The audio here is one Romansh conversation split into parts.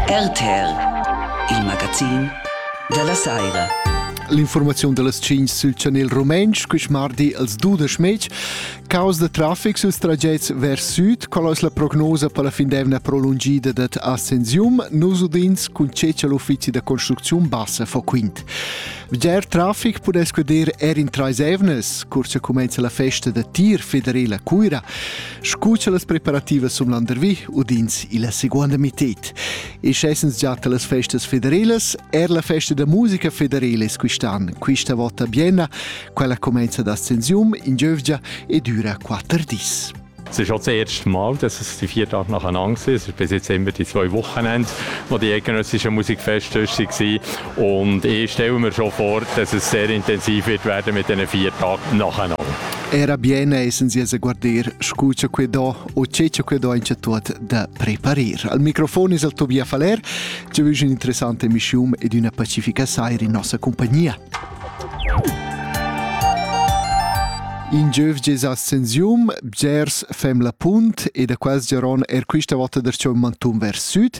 RTL, il magazin della saira. L'informaziun dallas 5 sul chanel rumantsch, quest mardi als 12 mec. Causa da traffic sui tragets vers sud, qual è la prognosa per la fin d'evna prolungida dat ascensium, nus udins cun ceccia l'uffici da construzione bassa fo quint. Vger traffic pudess guder er in trais evnas, cursa cumenza la festa da tir federela a Cuira. Scu cha las preparativas sun landervi udins illa seguonda mited. E schessens già da las festas federelas, er la festa da musica federela es quistan, quista vota bienna, quella comenza da ascensium in giövgia e düra quatter dis. Es ist auch das erste Mal, dass es die vier Tage nacheinander ist. Es ist bis Dezember die zwei Wochenende, wo die eidgenössische Musikfest war. Und ich stelle mir schon vor, dass es sehr intensiv wird werden mit den vier Tagen nacheinander. Era bien essen sie a guardir scu cha que do o che cha que do in tuot da preparir. Al microfon es el Tobias Faller, che vege un interessante emischium ed una pacifica saira in nossa compagnia. In giöv ges ascensium, bgers fem la punt e da quas geron er quista vota der cheu mantun vers sud.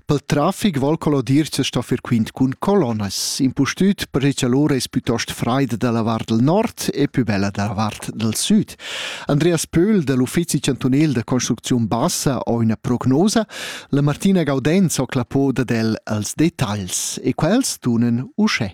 pel trafic vol colo dir cha sto fer quint cun colonnas. Impustüt perche lura es pütost fraida da la vart del nord e pü bella da la vart del sud. Andreas Pöhl da l'Uffizi chantunel da construcziun bassa ho üna prognosa, la Martina Gaudenz ho clappo dad el als detagls e quels tunen uschè.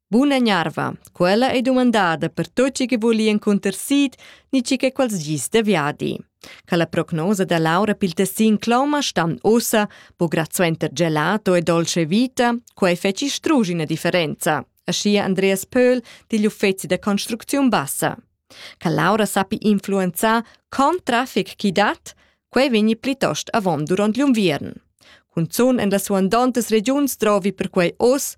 Buna gnarva, quella ei dumandada per tot tgi che voli encunter sid ni tgi che quels gis de viadi. Ca la prognosa da Laura pil tessin cloma stan ussa, bo grad suenter gelato e dolce vita, quei feci strusch ina differenza, aschia Andreas Pöhl digl uffeci da construcziun bassa. Ca Laura sappi influenzar con traffic chi dat, quei vegni plitost avon duront gl'unviern. Cunzun en las suandontas regiuns trovi perquei oz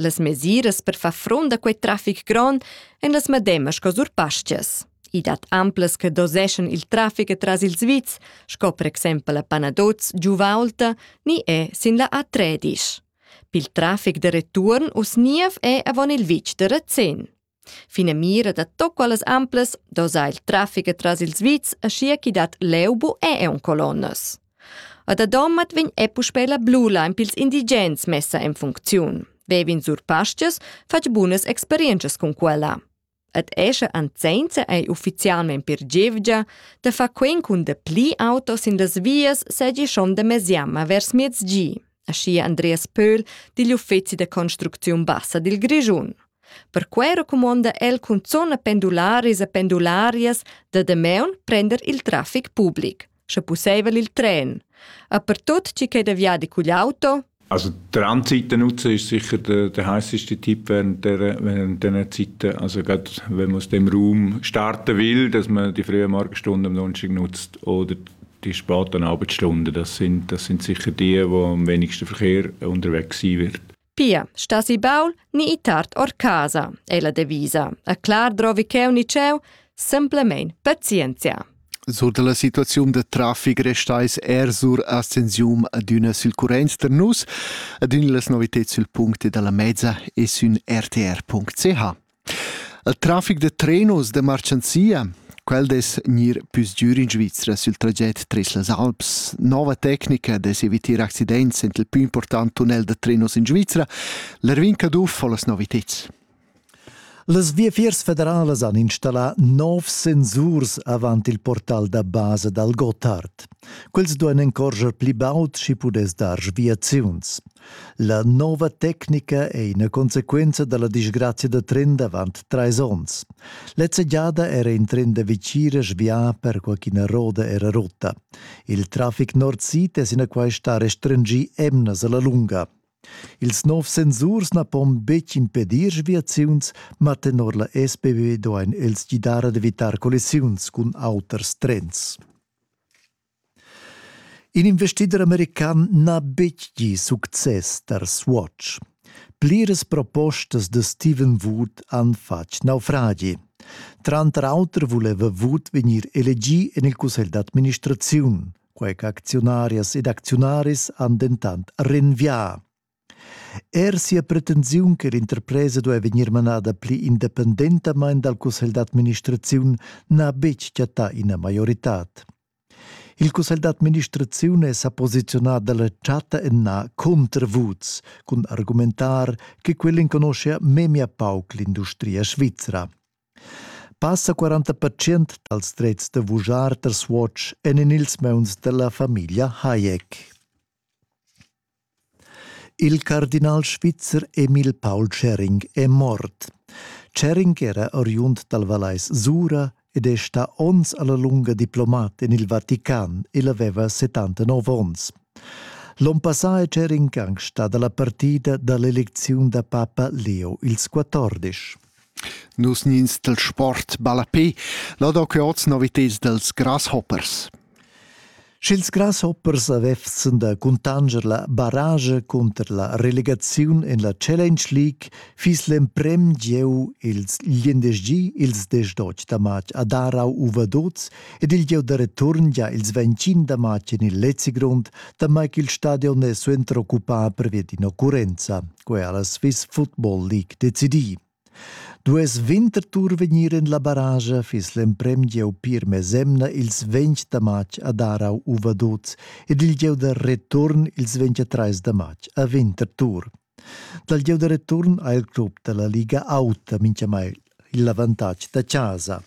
Las mesiras per far front a quei traffic grond ein las medemas sco surpastias. I dat amplas che doseschan il traffic tras ils vits, sco per exempel a Panadoz, Giuvaulta, ni è sin la A3. Il traffic da return us niev è avon il vitg da Razin. Finamira da to quellas amplas doza il traffic tras ils vits aschia chi dat leubu e eun colonnas. A da Dommat vegn e puspei la bluline pils indigens messa en funcziun. Vevin sur pastgas, fatg bunas experienzas cun quella. Ad escha anzenza ei ufficialment per gevgia da fa quen cun de pli auto sin las vias segi schon de mesiamma vers miezgi. aschia Andreas Pöhl digl uffeci da construcziun bassa dil Grischun. Perquei recumonda el cunzun a pendularis e pendularias da Dameun prender il traffic public, sche pusseivel il tren. A per tot chi che da viadi cugl auto, Also Transitnutzer ist sicher der, der heißeste Tipp während der, während der Zeit. Also gerade wenn man aus dem Raum starten will, dass man die frühen Morgenstunden am Donnerstag nutzt oder die spart dann Arbeitsstunden. Das sind, das sind sicher die, wo am wenigsten Verkehr unterwegs sein wird. Pia, stasi baul ni i tard or casa, è la devisa. A clar drovi cheu ni cheu, semplamein pazienzia. Sot la situaziun da traffic restais er sur ascensium adüna sül current da nus, ad ün las noviteds sul punct dalla mezza e sün rtr.ch. Il trafic da trenus da mercanzia quel dess gnir pü sgür in Svizra sül traget tres las Alps. Nova tecnica dess evitar accidents ent il pü important tunnel da trenus in Svizra. L'Erwin Caduff ho las noviteds. Las viafiers federalas han installà nov sensurs avant il portal da basa dal Gotthard. Quels duain encorger pli baud schi pudess dar sviaziuns. La nova tecnica è ina consequenza da la disgrazia da trend avant trais onns. Lezza giada era in trend da vicira svià per quai ch'ina roda era rutta. Il traffic nord-sid è sinaquai stà restringì emnas a la lunga. Ils nov sensurs na pon betg impedir sviaziuns, ma tenor la SPV duain els gidar ad evitar collisiuns cun auters trends. In investider american n'ha betg gì success tar Swatch. Pliras propostas da Steven Wood han fatg naufragi. Tranter auter vuleva Wood vegnir elegì en il cussegl d'administraziun. Quai che acziunarias ed acziunaris han dentant rinvià. Er sia pretensiun che l'interpresa duai vegnir manada pli independentamain dal cussegl d'administraziun n'ha betg chattà ina maioritad. Il cussegl d'administraziun è sa posiziunà da la chatta ennà contravuts cun argumentar che quel enconoschia memia pauc l'industria svizra. Passa 40% dals drets da Vujarters Watch èn en ils mauns da la famiglia Hayek. Il cardinal svizzer Emil Paul Schering è mort. Schering era oriund dal Vallais Sura ed è stà onns a la lunga diplomat en il Vatican. El aveva 79 onns. L'onn passà è Schering anc stà da la partida da l'elecziun da papa Leo ils 14. Nus nins dal sport ballapè lada que oz novitads dals grasshoppers. Sch'ils grasshoppers avessan da cuntanger la barragia cunter la relegaziun en la Challenge League fiss l'emprim gieu ils gliendisgi ils desch d'otg da matg a Darau u Vaduz ed il gieu da return gia ils 25 da matg en il Lezigrund, damai ch'il stadion è suenter occupà pervia d'in'occurrenza. Quai ha la Swiss Football League decidì. Duess Winterthur vegnir en la barage fiss l'emprem gieu pir mesemna ils 20 da matg a Darau u Vaduz ed il gieu da return ils 23 da matg a Winterthur. Dal gieu da return ha il club da la Liga auta mintgamai il avantatg da casa.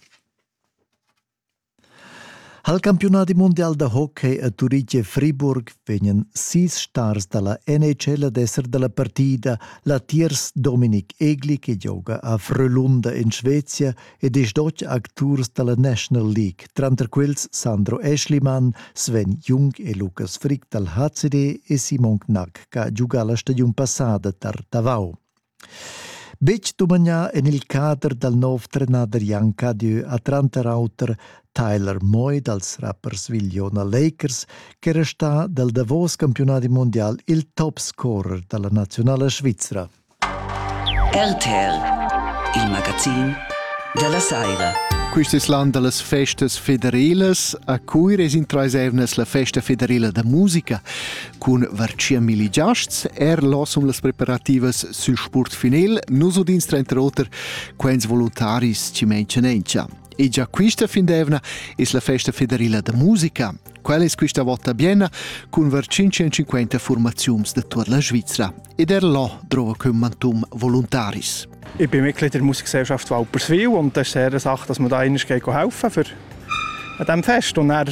Ha il campiunadi mundial da hockey a Turitg e Friburg vegnan sis stars da la NHL ad esser da la partida. Latiers Dominik Egli che gioga a Frölunda in Svezia ed è stoch acturs da la National League. Tranter quels Sandro Eschlimann, Sven Jung e Lukas Frick dal HCD e Simon Knack che ha giugà la stagiun passada tar Tavau. Betg dumagnà en il cader dal nov trenader Jan Cadieu ha tranter auter Tyler Moy dals rappers Vigliona Lakers ch'era stà dal davos campiunadi mundial il topscorer da la naziunala svizra. RTL, il magazin da la saira. Quist es l'an da las festas federelas. A Cuira es in trais eivnas la festa federela da musica. Cun vartschia milli giasts er l'ossum las preparativas sül spurt final. Nus udins tranter oter quens voluntaris ci mention encha. E già quista fin d'evna es la festa federila da musica. Quella es quista vota a Bienna cun var 550 formaziuns da tuot la Svizzera. Ed er là drova ch'ün mantum voluntaris. Ich bin Mitglied der Musikgesellschaft Walperswil und das ist sehr eine Sache, dass man da einmal helfen für Ad am fest donar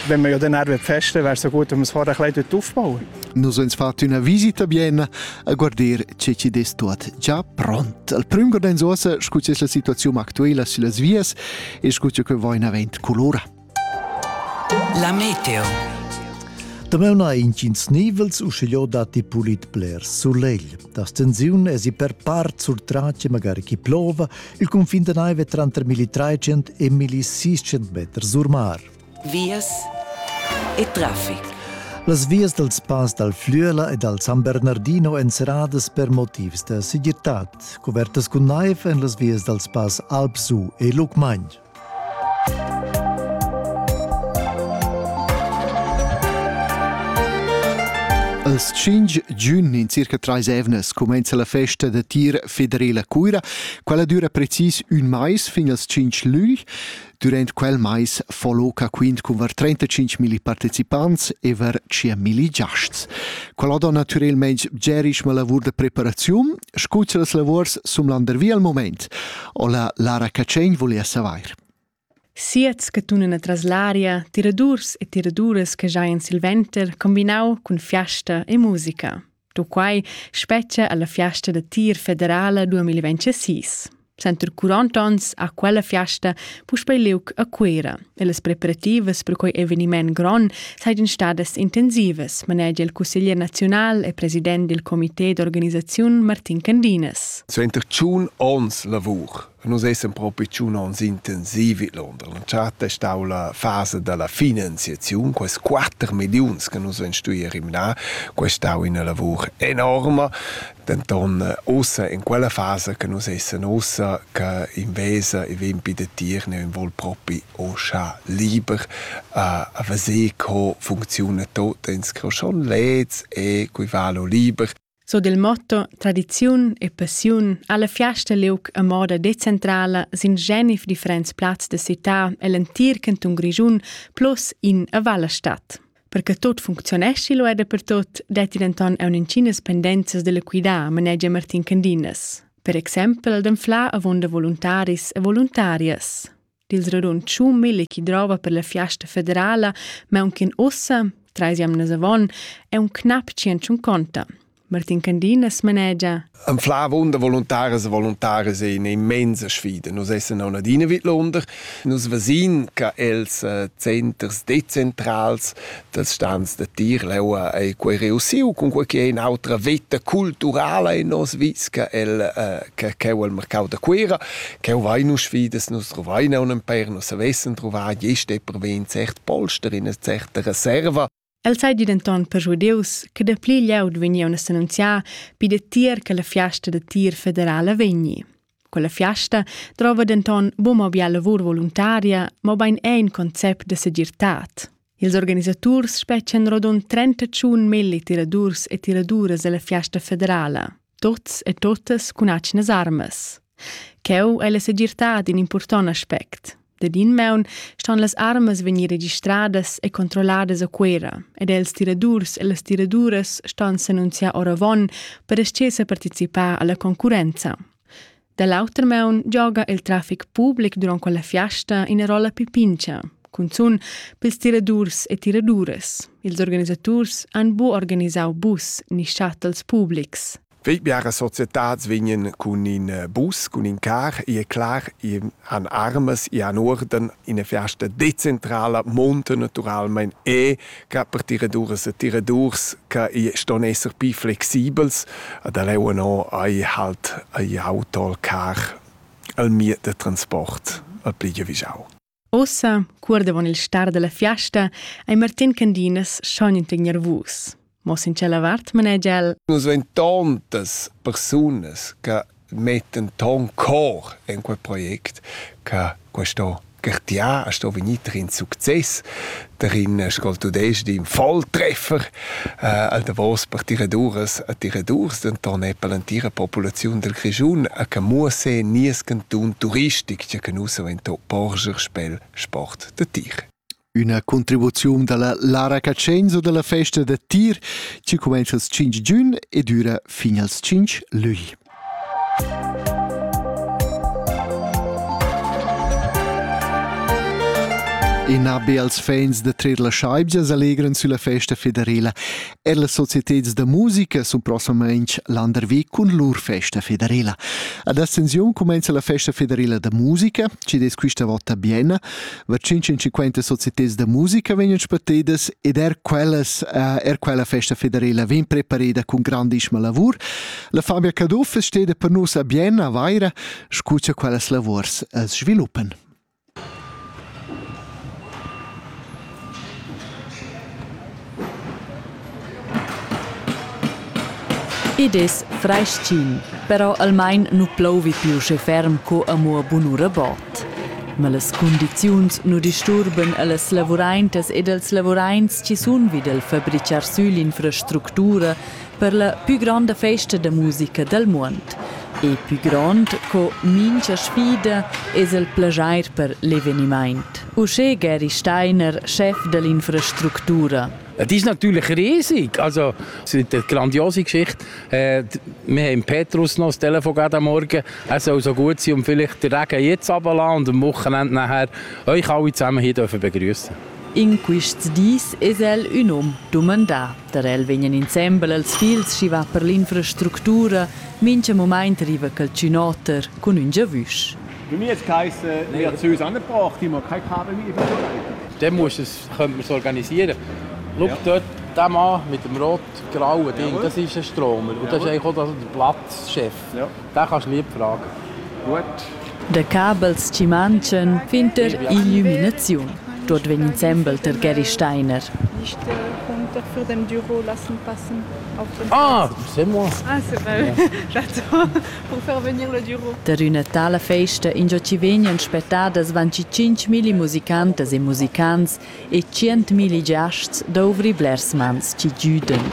wenn wir ja den Erwe feste, wäre so gut, um das Fahrrad ein bisschen aufbauen. Nus uns fat üna visita bien a guarder che ci des tuot già pront. Al prüm guardain sosa, scu es la situazione actuela sillas vias e scu che va in avent colora. La meteo. Domena intgins nivels uscigliò dati pulit bler sulegl. Das Tensiun es i per part sur trace magari chi plova Il cunfin da naiv è tranter 1300 e 1600 meters sur mar. Vias e traffic. Las vias dals pass dal Flüela e dal San Bernardino èn serradas per motivs da segirtad, cuvertas cun naiv en las vias dals pass Alpsu e Lucmagn. Als 5 giun in circa treis evnas cumenza la festa da tir federela Cuira. Quella dura precis ün mais fin als 5 lügl. Durant quel mais folloca quint cun var 35.000 partecipants e var 5.000 giasts. Quella do naturalmente bgerisma lavur da preparaziun Scu cha las lavuors sumlandervi al moment, o la Lara Catschegn volia savair. Siets che tunan atras l'aria, tiradurs e tiraduras che giajan silventer combinau cun fiasta e musica. Tu quai spetga alla fiasta da tir federala 2026. Center 40 onns a quella fiasta puspei liug a Cuera e las preparativas per quei eveniment gron seigien stadas intensivas, manegia il cusseglier nazional e president dil comité d'organisaziun Martin Candinas. Center 100 onns lavur. Nus essen propi tschun onns intensiv in Londra. L'entschatta è stau la fase dalla finanziaziun, quest 4 milliuns che nus vegn stuier rimnar, quest stau ina lavur enorma. denton ussa in quella fasa che nus essen ussa che in vesa e vempi de tier ne ün vol propi o scha liber a, a veser co funcziuna tot ins che schon lez e cui valo liber So del motto tradiziun e passiun alla fiasta leuc a moda decentrala sin genif differents plaz de città e l'entir canton grischun plus in a Vallastadt. Per che tut funcziuneschi lo e dapertut detti denton aun inginas pendenzas da liquidar, manegia Martin Candinas. Per exempel d'anflar avonda voluntaris e voluntarias. Dils radund 10.000 chi drova per la fiasta federala, ma aunc in ussa, treis jamnas avon, è un knap 150. Martin Candin as manegia. Anfla wunder voluntares e voluntares è eine immensa sfida. Nus essen auch nicht wie Lunder. Nus vesin che els äh, centers dezentrals das stands de Tierleua e quei reussiu con quei che in autra vetta culturala in nos vis che el äh, che cheu el mercau de Quera, cheu vai nus sfidas, nus trovain auch un per, nus vessen trovar jeste per wen cert Polster in eine certe Reserva El seigi denton perschudius che dapli glieud vegnieun a s'annunziar pi datier che la fiasta da tir federala vegni. Quella fiasta drova denton buca bia lavur voluntaria, mobein è in concept de segirtad. Ils organisaturs spetgan rodun 31 milli tiradurs e tiraduras alla fiasta federala. Tots e tuttas cun atgnas armas. Cheu è la segirtad in impurtant aspect. Dad in maun ston las armas vegnir registradas e controlladas a Cuera ed els tiradurs e las tiraduras ston s'annunziar oravon per ascher sa participar alla concurrenza. Da l'auter maun gioga il trafic public durant quella fiasta ina rolla più pincha, cunzun pils tiradurs e tiraduras. Ils organisaturs han bu organisau bus ni shuttles publics. Weltbiare Societats vegnen cun in eh, bus, cun in car, e è klar, i han armes, i han orden, in fiasta decentrala, monta naturalmente e Ca per tiraduras e tiradurs ca ston esser pii flexibels, ad el eu no ai halt ei auto al car al mied da transport al pli giavüschau. Ossa, cur davon il star dalla fiasta, ei Martin Candinas schon in nervus. Mo sin tschella vart manegia el: Nus vein tontas persunas ca mettan ton cor en quel project che questo quartier è sto vegnir ter in success, ter in sco tudesc di in volltreffer eh, al davos per tiraduras e tiradurs, denton è per l'entira populaziun del Grischun e che muosse nies cantun turistic che conosce in to porscher spel sport de tir. Üna contribuziun da la Lara Cacenzo da la festa da tir chi cumenza als 5 giun e düra fin als 5 lui. E na be als fans da trer la scheibgia s'allegran sulla festa federela. Er las societeds da musica sun prossamaintg landervi cun lur festa federela. Ad ascensiun cumenza la festa federela da musica, ci des quista vota biena. 550 societés da musica vegnan spatedas ed er, quellas, uh, er quella festa federela vegn prepareda cun grandissima lavur. La Fabia Caduff steda per nus a Bien a Vaira, scuccia quellas lavurs as sviluppan. Id es freschin, però almain nu plouvi più sche ferm co amo a bunura bod. Ma las cundiziuns nu disturban a las lavuraintas ed als lavuraints chi sun vi dal fabritschar sül infrastructura Per la pü gronda festa da musica dal muond e pü grond co mincha sfida es el plaschair per l'evenimaint. Uschè Gary Steiner, schef da l'infrastructura. Das ist natürlich riesig, also es ist eine grandiose Geschichte. Äh, wir haben Petrus noch das Telefon gerade am Morgen. Es soll so gut sein und vielleicht den Regen jetzt runterlassen und am Wochenende nachher euch alle zusammen hier begrüßen. In quists dis es el ün hom dumandà. Tar el vegnan insembel els figls chi va per l'infrastructura, mincha mumaint riva qualchün oter cun ün giavüsch. Mias caisas via sü s'han porti, mo quai pavel mi eventualmente. Dann muss es, könnte man es organisieren. Schluckdort, der Mann mit dem rot-grauen Ding, das ist ein Stromer. Und das ist eigentlich auch der Platzchef. Ja. Tachasch lieb frag. What? Da cabels chi mantschan fin tar illüminaziun. Tuot vegn insembel tar Gary Steiner. Nicht unter für den Düro lassen passen. Ah, c'est moi. Ah, c'est bel. J'attends pour faire venir le Düro. Tar üna tala festa ingio chi vegnan spettadas van chi tschinch milli musicantas e musicants e tschientmilli giasts dovri blers mans chi güdan.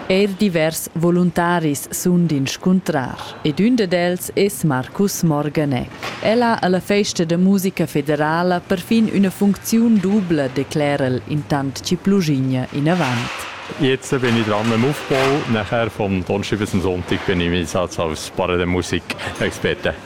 Eir divers voluntaris sun d'inscuntrar ed ün dad els es Marcus Morganè. El ha a la festa da musica federala perfin üna funcziun dubla, declera'l intant chi plugigna inavant. Jetzt bin ich dran beim Aufbau. Nachher vom Donnerstag bis zum Sonntag bin ich im Einsatz als Barre de Musique-Experte.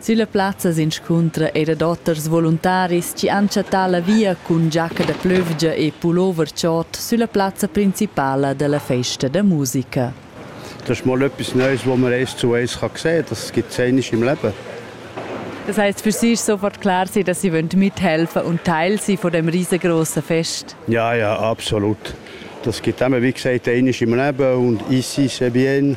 Sülla plazza s'inscuntra eir dad oters voluntaris chi han chattà la via cun giacca da plövgia e pullover chod sülla plazza principala da la festa da musica. Das ist mal etwas Neues, was man eins zu eins kann sehen kann. Das gibt es einmal im Leben. Das heißt für Sie ist sofort klar, dass Sie mithelfen und Teil sind von dem riesengroßen Fest? Ja, ja, absolut. Das gibt eben, wie gesagt, einmal im Leben und ici c'est bien.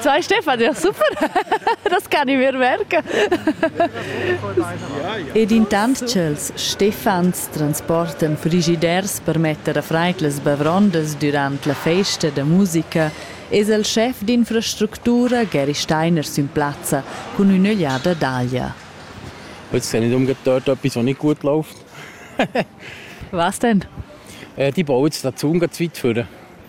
Sai Stefan der super das kann ich mir merken. Ed intant ch'els Stefans transportan frigiders per metter a fraid las bavrondas durant la festa da musica, es el schef d'infrastructura Gary Steiner sün plazza cun ün'ögliada d'aglia. Jetzt sind nicht umgeteilt, etwas, was nicht gut läuft. Was denn? Äh, die bauen jetzt dazu, um zu weit führen.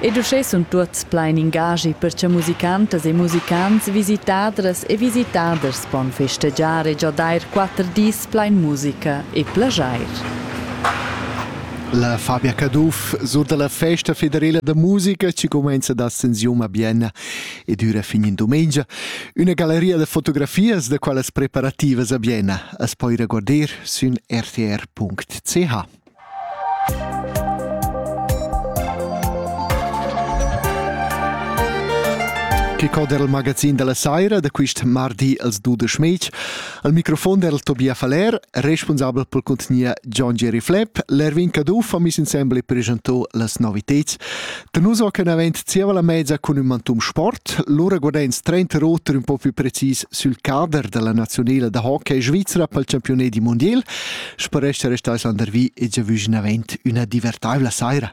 Ed uschè sun tuots plain ingaschi per cha musicantas e musicants, visitadras e visitaders pon festegiar e giodair quatter dis plain musica e plaschair. La Fabia Caduff sur da la festa federela da musica ci cumainza da sensiun a Bienna e düra fin in dumengia. Üna galleria da fotografias da quellas preparativas a Bienna as poi regorder sün rtr.ch. Che coda il magazin della saira da quist mardi als 12 mec. Al microfon del Tobia Faller, responsabel per contenia John Jerry Flepp, l'Erwin Caduff ha mis insembel e presentò las noviteds. Tenuso che avent zieva la mezza con un mantum sport, lura guardens 30 roter un po più precis sul cader della nazionale da hockey svizzera pel campione di mondial, Sper esser restai suandervi e giavüsch navent üna divertaivla saira.